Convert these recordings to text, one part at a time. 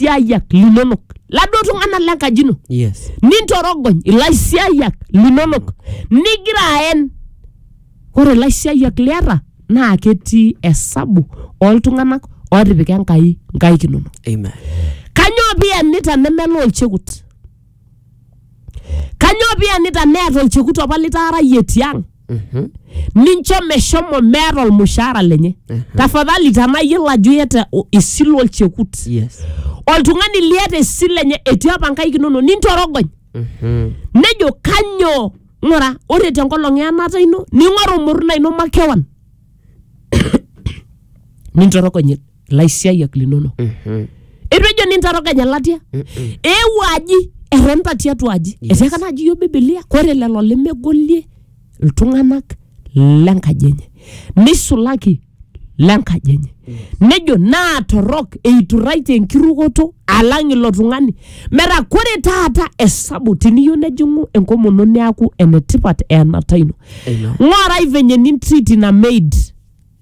ilaisiayiak linonok laduo tung'anak lenkaji ino yes nintorogony ilaisiayiak linonok nigira aen ore ilaisiayiak liata naa ketii esabu oltung'anak otipika enkai nkaik inonok amen kanyoo piyanita nemelo olchekut kanyoo piyanita neeta olchekut apa litaarayie tiang nincho meshomo meeta olmushaara lenye tafadhali tenaa iyiolo ajo iyata o- esile olchekut yes oltung'ani liata esile enye etii apa nkaik inonok nintorogony nejo kanyoo ng'ura ore tenkolong eanata ino ning'oru murna ino makewan nintorogony ilaisiayiak linono Mhm. eitu ejo nintaroganya latia Mm-mm. eewuo aji etonita tiatua aji Yes. etiaka naaji yiok bibilia kore lelo lemegolie iltung'anak lenkaji enye neisulaki lenkaji enye nejo naa torrok eiturraitie enkirukoto alang ilo tung'ani metaa kore taata esabu tiniyieu nejing'u enkomono neaku enetipat eenata ino Amen. ng'orai venye nintriti ina maid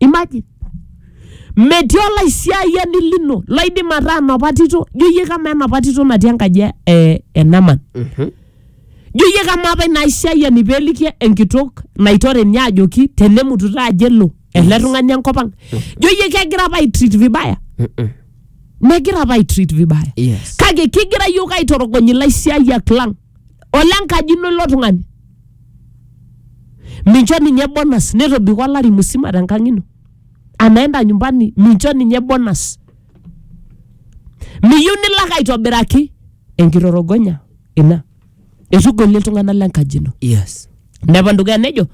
imagine metii olaisiayiani lino loidim ataa enapa tito jo iyie kama enapa tito natii enkaji e- e- e naman Mhm. jo iyie kama apa ina aisiayiani peeliki enkitok naitore ninye ajoki tenemutu taa ajo elo ele tung'ani enkop ang jo iyie kegira apa aitreat vibaya Mm-mm. megira apa aitreat vibaya Yes. kake kigira yiok aitorogony ilaisiayiak lang olenkaji ino ilo tung'ani mincho ninye bonus netobiko olari musima tenkang ino anaenda nyumbani mincho ninye bonus miyieu nilak aitobiraki enkitorogonya ina etugolie iltung'anak lenkaji ino yes nepan dukuya nejo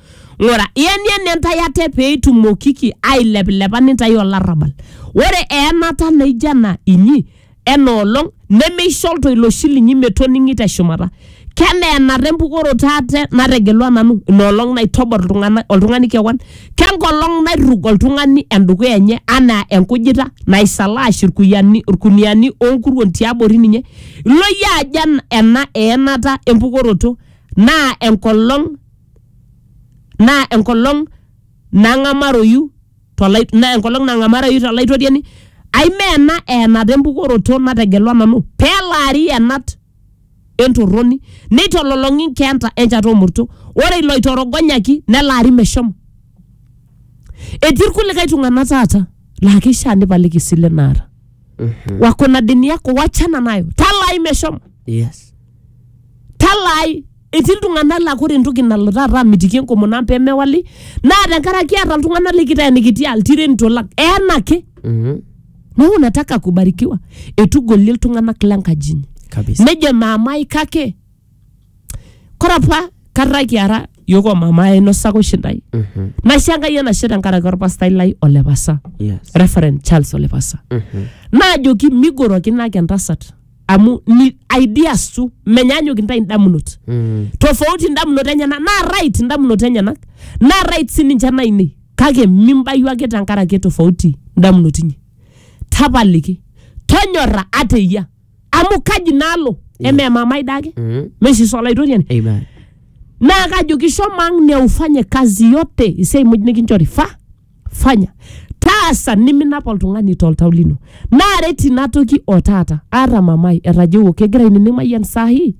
ng'ura ienieni intae ate pee itumokiki ailepilepa nintae olarrabal ore eenata naijo ena inyi ena olong nemeisho oltoilo oshi linyi metoning'i te shumata kenaa enata empukoroto ate nategelua nanu ina olong naitobor iltung'ana oltung'ani kewan kenkolong nairrug oltung'ani endukuya enye anaa enkujita naisalaash irkuyiani irkuniani onkuruon tiabori ninye ilo iyie ajo en- ena eenata empukoroto naa enkolong naa enkolong nang'amaroyu tolai na enkolong nang'amarayu tolaitoriani ai mee ena eenata empukoroto nategelua nanu pelaari ienat entorroni neitololong'i inkeenta enchata omurto ore iloitorogonyaki nelaari meshomo etii irkulikae tung'anak taata laa keishia nipaliki isile naata wako na deni yako wachana nayo talai meshomo yes talaai etii iltung'anak laa kore entoki nalo taata amitiki enkomono ang pemewali naa tenkaraki eeta iltung'anak likiteenikiti aa iltirenito lang eenake Mhm. neeku nataka kubarikiwa etugolie iltung'anak lenkaji inyi kabisa nejo maamai kake kore apa kata kiara yiok omama ainosaka oshi ndai Mhm. naisho enkai enashe tenkaraki orpastai lai olepasa yes reverend charles olepasa Mhm. naajoki migorokinake entasat amu ni ideas tu menyanyuk intae indamunot Mm. tofauti indamunot enyenak naa right indamunot enyenak naa right sininche nainei kake mimbayu ake tenkaraki tofauti indamunot inyi tapaliki tonyora ateyia amu kaji nalo eme mamai dake Mm. meshiso olaitoriani Amen. naa kajoki shomo ang neufanye kazi yote isiai muj nikinchori fa fanya taasa niminap oltung'ani toltau lino naaret ina toki o taata aata mamai etajeuo kegira ainining mayian sahi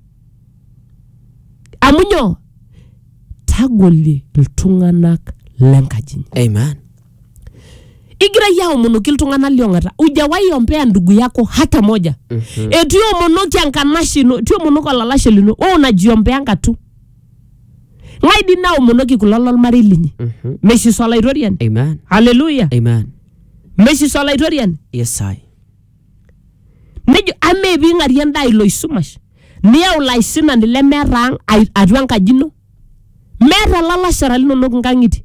amu nyoo tagolie iltung'anak lenkaji inyi Amen. igira yie aomonoki iltung'anak liong'ata ujawahi ompea ndugu yako hata moja mm-hmm. etu iomonoki enkanashe ino etu iomonoki olalashe lino we unajiombea ngatu Ng'ae dii naomonoki kulo lolmarei linyi? Mhm. Meshiso Olaitoriani. Amen. Haleluya! Amen. Meshiso Olaitoriani. Yes, I. Nejo, amaa eping'arie endaa ilo oisumash, niyau ilo aisinani lemeeta ang' ai- atua enkaji ino? Meeta ilalashera linonok inkang'itie?